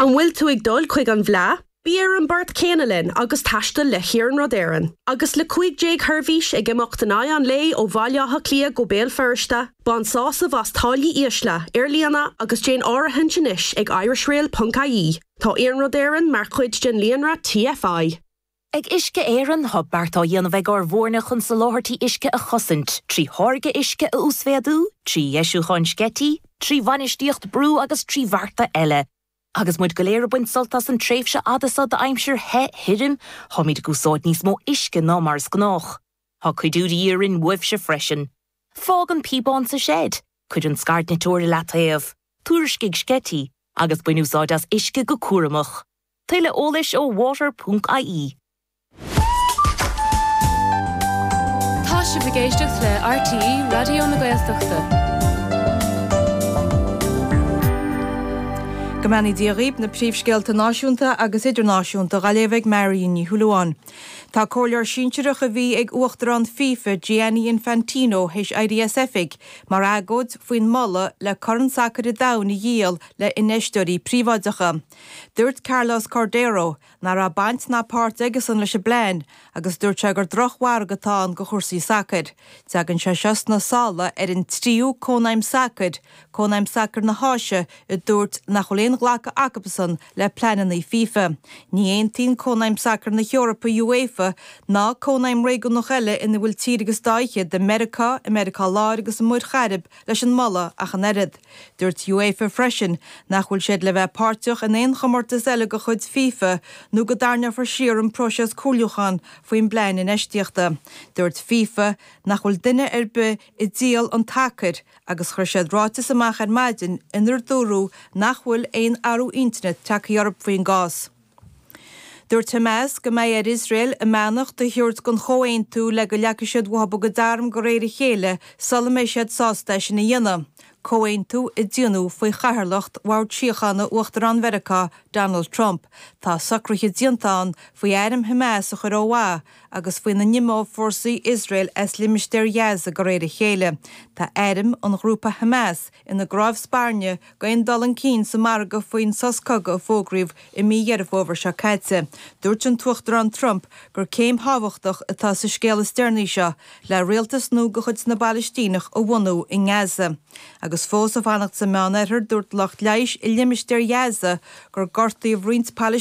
An bhfuil tú ag dul chuig an bhFleá? Bí ar an bport céanna linn agus taisteal le hIarnród Éireann. Agus le cúig sheirbhís déag ag imeacht in aghaidh an lae ó Bhaile Átha Cliath go Béal Feirste, bain sásamh as táillí ísle ar líne agus déan áirithint anois ag irishrail ponc ie, tá Iarnród Éireann mar chuid den líonra TFI. Ag Uisce Éireann, tá beart á dhéanamh ag ár bhfoirne chun soláthairtí uisce a chosaint, trí tháirgeadh uisce a uasmhéadú, trí dheisiúcháin sceití, trí bhainistíocht brú agus trí bhearta eile. Agus muid go léir ag baint sult as an tréimhse fhada seo d'aimsir the, thirim, táimid ag úsáid níos mó uisce ná mar is gnách. Tá cuidiú de dhíth orainn uaibhse freisin. Fág an píobán sa seid, cuir an scairdniteoir i leataobh, tuairiscigh sceití, agus bain úsáid as uisce go cúramach. Tuilleadh eolais ó water ponc ie. Tá sibh ag éisteacht le RTÉ Raidió na Gaeltachta. Go mbeannaí Dia dhaoibh, na príomhscéalta náisiúnta agus idirnáisiúnta dha léamh ag Marion Ní Shúilleabháin. Tá comhairleoir sinsearach a bhí ag Uachtarán fifa Gianni Infantino théis éirí as oifig mar agóid faoin moladh le Corn Sacair an Domhain a dhíol le infheisteoirí príobháideacha. Dúirt Carlos Cordeiro nach raibh baint ná páirt aigesan leis an bplean agus dúirt sé gur drochmhargadh atá ann do chúrsaí sacair. Teagann sé seo sna sála ar an tríú Cónaidhm Sacair, Cónaidhm Sacair na hÁise, a dúirt nach bhfuil aon ghlacadh acusan le pleananna fifa. Ní aontaíonn Cónaidhm Sacair na hEorpa, UEFA, ná cónaidhm réigiúnach eile ina bhfuil tír agus dhá fhichead i Meiriceá, i Meiriceá Láir agus i Muir Chairib leis an moladh ach an oiread. Dúirt UEFA freisin nach bhfuil siad le bheith páirteach in aon chomórtas eile de chuid FIFA nó go dtarrneofar siar an próiseas comhairliúcháin faoin bplean infheistíochta. Dúirt FIFA nach bhfuil duine ar bith ag díol an tsacair agus chuir siad ráiteas amach ar maidin inar dúradh nach bhfuil aon athrú intinne tagtha orthu faoin gcás. Dúirt Hamas go mbeidh ar Iosrael a mbeannacht a thabhairt don chomhaontú le go leagfaidh siad uathu a gcuid arm de réir a chéile sula mbeidh siad sásta é sin a dhéanamh, comhaontú a déanadh faoi chathaoirleacht Bhord Síochána Uachtarán Mheiriceá, Donald Trump. Tá socruithe déanta ann faoi airm Hamas a chur ó mhaith agus faoina n-imeodh fórsaí Iosrael as limistéar Ghaza de réir a chéile. Tá airm an ghrúpa Hamas ina gcnámh spairne, d'aon dul chun cinn sa margadh faoin sos cogaidh a fógraíodh i mí Dheireadh Fómhair seo caite. Dúirt an tUachtarán Trump gur céim thábhachtach atá sa scéal is deireanaí seo le rialtas nua de chuid na bPalaistíneach a bhunú i nGaza. Agus fós ag fanacht sa Meánoirthear, dúirt lucht leighis i limistéar Ghaza gur gortaíodh roinnt